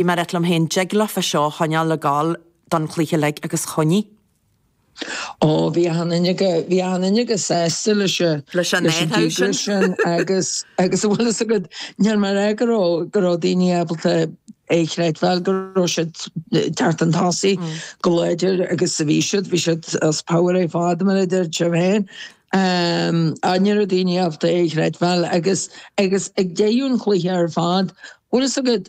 Bhí mé ag ráit liom féin an dtig leofa seo a choinneáil ag gabháil don chluiche uilig agus choinnigh. Ó, bhí achan duine chomh, bhí achan duine chomh sásta leis an, leis an díograis sin agus, agus an bhfuil fhios agat, níor mar é go raibh, go raibh daoine ábalta é a chreidbheáil go raibh siad ag teacht chun tosaigh chomh láidir agus sa bhí siad, bhí siad as pabhar ar fad mar a deir siad féin. Á, ní raibh daoine ábalta é a chreidbheáil agus, agus ag deireadh an chluiche ar fad, bhfuil fhios agat,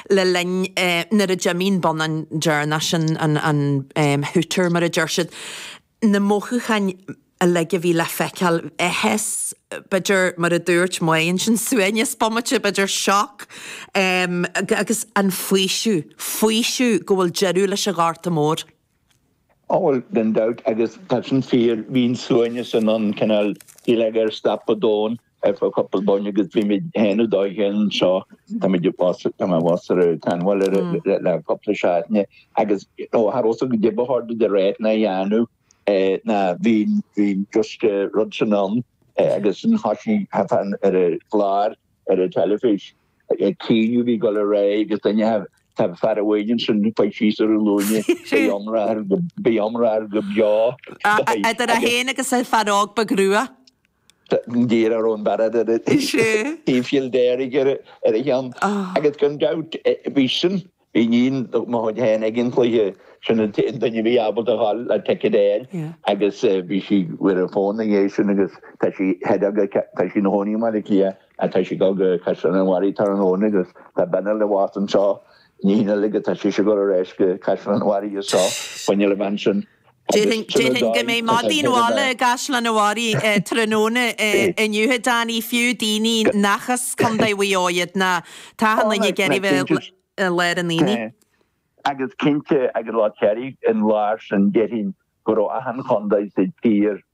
le linn nuair a d'imigh an bonnán deireanach, an hooter mar a deir siad, na mothúcháin uilig a bhí le feiceáil, áthas, b'fhéidir mar a dúirt Mae ansin, suaimhneas bomaite, b'fhéidir shock agus an faoiseamh, faoiseamh go bhfuil deireadh leis an Ghorta Mór. á bhuel gan dabht agus tá sin fíor, bhí an suaimhneas sin ann cineál shílfeá gur stop an domhan ar feadh cúpla bomaite agus bhí muid féin nó dóigh fhéin anseo, táimid abhus, tá mé abhus ar an tseanbhaile ar le le cúpla seachtaine agus ní raibh a fhios agam caidé ba chóir domh a ráit ná a dhéanamh ná bhí an bhí an just rud sin ann agus ansin thosaigh fear amháin ar an gclár ar an teilifís. ag caoineadh bhí go le ré agus duine a Tá fear amháin ansin chuaigh síos ar a ghlúine, beidh iomrá air go, beidh iomrá air go brách. Idir é féin agus an fear óg ba ghrua. D'iarr Árón Barrett ar an taobh siúil dearg ar a cheann agus gan dabht bhí sin Iníon mo chuid féin ag an chluiche, sin an t-aon duine a bhí ábalta a fháil a ticket air agus bhí sí ar an fón ina dhiaidh sin agus tá sí head of the, tá sí ina chónaí i mBaile Átha Cliath ach tá sí ag dul go Caisleán an Bharraigh tráthnóna agus tá bean eile abhus anseo, iníon eile agus tá sise ag dul ar ais go Caisleán an Bharraigh is tá sinne le bheith ansin. Déarfainn go mbeidh maidín mhalla i gCaisleán an Bharraigh tráthnóna inniu, a Danny, fiú daoine nach as Contae Mhaigh Eo iad ná tá achan duine ag iarraidh bheith i lár an aonaigh. Agus cinnte agus Lá Cléirigh in lár sin déarfainn go raibh achan chontae sa tír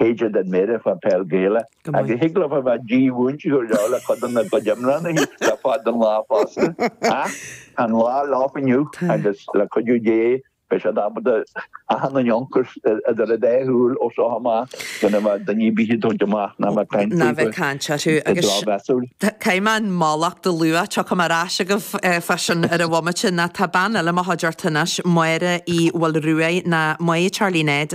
théide den méire fá pheil Ghaelach agus thig liom a bheith dímhúinte go leor le codanna na gcuid iomlánaithe le fáil don lá fosta. Ach tá an lá leo inniu agus le cuidiú Dé beidh siad ábalta achan an ionchas idir an dá shúil ó seo amach gan a bheith daoine bídh tógtha amach ná a bheith ag caint orthu go drochmheasúil. Caithfidh mé an mhallacht a lua tiocfaidh mé ar ais agaibh fá sin ar an bhomaite ná tá bean eile i mo chuideachta anois, Máire Uí Mhaoilruaidh, nó Mae Charlie Ned,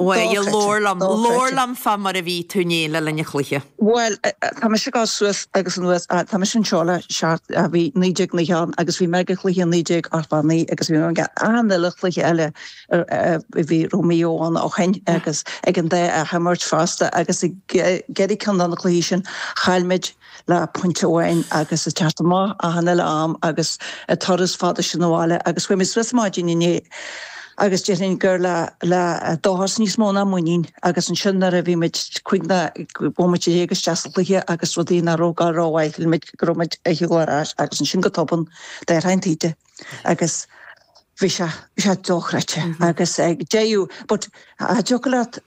Bhuel, labhair liom. Labhair liom fá mar a bhí tú inné le linn an chluiche. Bhuel, tá mise ag dul suas agus anuas, tá mise anseo le seacht, bhí naoi déag nócha ann agus bhí mé ag an chluiche naoi déag ochtó a naoi agus bhí mé ag achan uile chluiche eile a bhí a raibh Maigh Eo ann ó shin agus ag an dá athimirt fosta agus ag ceithre cinn de na cluichí sin chaill muid le pointe amháin agus ag teacht amach achan uile am agus an turas fada sin abhaile agus chuaigh muid síos maidin inné agus déarfainn linn gur le le dóchas níos mó ná muinín agus ansin nuair a bhí muid cúig nóiméad déag isteach sa chluiche agus rudaí ní raibh ag gabháil rómhaith shíl muid go raibh muid ag gabháil ar ais agus ansin go tobann d'athraigh an taoide agus bhí sé bhí sé dóchreidte agus ag deireadh but an dtiocfadh leat